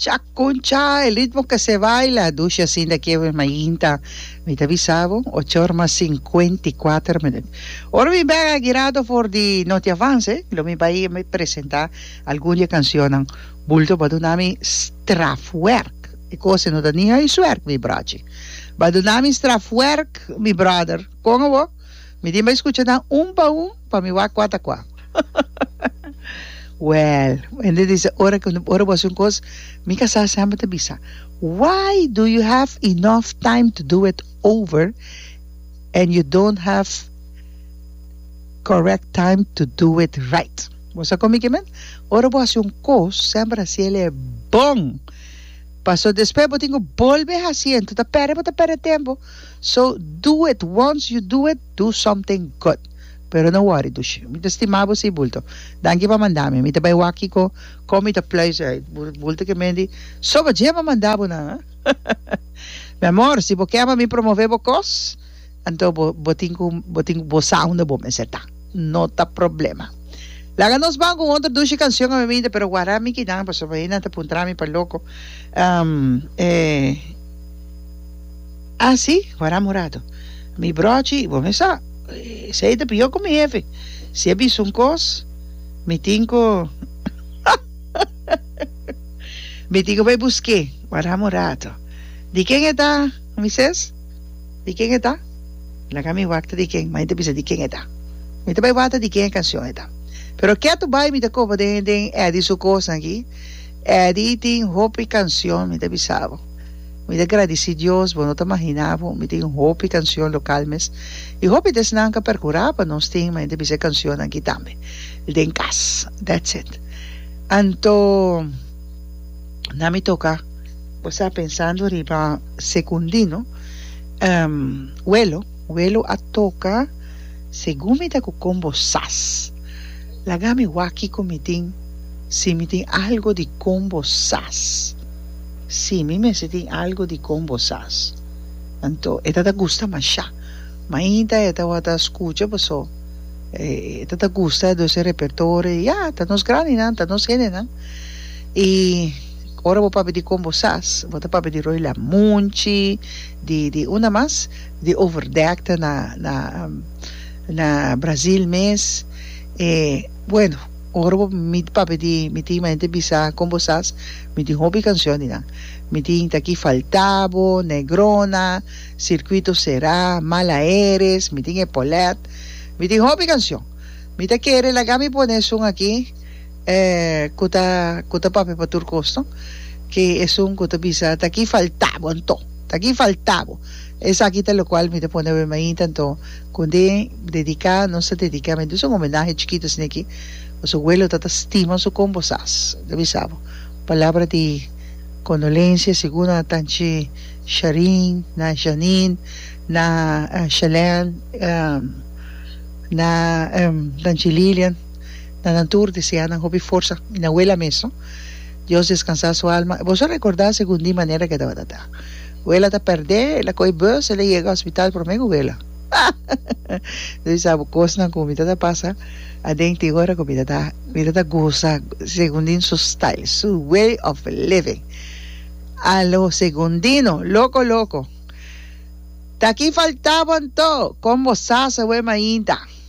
Cha con cha el ritmo que se baila dushi asinda kie we mainta mi ta bisa bo ocho ora mas cincuenta y cuatro minuut ora mi bek a girado for di noti avance lo mi bai a mi presenta algun di e cancionnan bulto ba duna mi strafwerk e cosa no ta ni huiswerk mi brochi ba duna mi strafwerk mi brother con awor mi tin bai scucha nan un pa un. Pa mi wak wata kua. Well, hende di se ora ke ora bo hasi un kos, mi ka sa semper ta bisa, why do you have enough time to do it over and you don't have correct time to do it right. Bo sa kon mi ke men? Ora bo hasi un kos, semper hasi el e bon. Paso despues bo tin ku bolbe hasi, enton ta pèrdè bo ta pèrdè tempo. So do it once you do it, Do something good pero no worry Dushi mi ta stima bo si bulto danki pa manda mi mi ta bai wak kiko kon mi ta pluis e bulto ke mendi so bo dje pa manda bo nan mi amor si bo ke pa mi promove bo kos anto bo bo tin ku bo tin ku bo sa unda bo mester ta no ta problema laga nos ban ku otro Dushi kanshion a mimita pero wara mi kinan pasobra e nan ta puntra mi pa loko e. Ah si? Wara Murado. Mi brochi y bo mes sa. Esey ta pio cu mi hefe. Si e bisa un cos, mi tin cu mi tin cu bay busque, wara Murado. Di ken e ta, Moises? Di ken e ta? Laga mi wak-ta di ken, ma e ta bisa di ken e ta. Mi ta bay wata di ken e cancion e ta. Pero ke tu bay mi ta coba den Eddy su cosnan aki. Eddy tin hopi cancion, mi ta bisa bo. Mi ta gradici Dios, bo no ta mahina bo, mi tin hopi cancion local mes, y hopi desnan ca percura pa nos tin, ma ente bisa e cancionnan aki tambe, el den cas, that's it. Anto na mi toca, bo sa pensando riba Secundino, Welo, Welo a toca segun mi ta cu con bo sas, laga mi wak kico mi tin, si mi tin algo di con bo sas. Sí, mi mester tin algu di kon bo sas. Anto, e ta ta gusta mashá. Mainta e tabata skucha paso e ta ta gusta dos e repertorio. Ya, ta nos grandinan, ta nos hendenan. I ora bo papia di kon bo sas, bo ta papia di Roy Lamunchi, di, di unda mas? Di Overdack ta na, na, na Brazil mes. E, bueno. Ora bo mi papia di mi tin mente bisa con bosas mi tin hopi cancion di nan mi tin ta aki falta bo negrona circuito cera mal aeres mi tin e polet mi tin hopi cancion mi ta kere laga mi pone esun aki e cu ta cu ta papia pa tur cos no ke esun cu ta bisa ta aki falta bo anto ta aki falta bo esaki ta locual mi ta pone awe mainta anto Con te dedica nos ta dedica me dus un homenahe chikito asina ki nos abuelo ta ta stima su combo sas ta bisa bo palabra di condolencia segura na tanchi Sharin na Janin na Shelen na tanchi Lilian na nan tur desea nan hopi forsa y na abuela mes no Dios descansa su alma boso recorda segun di manera ke tabata ta. Wela ta perdé, el a kohe bus, el a yega hospital promé ku wela. Yu sa bo kosnan ku mi ta ta pasa aden tin ora ku mi ta ta mi ta ta goza Segundino su style, su way of living. A lo Segundino, loko loko. Ta ki faltaba anto, kon bo sa sa wema ainda.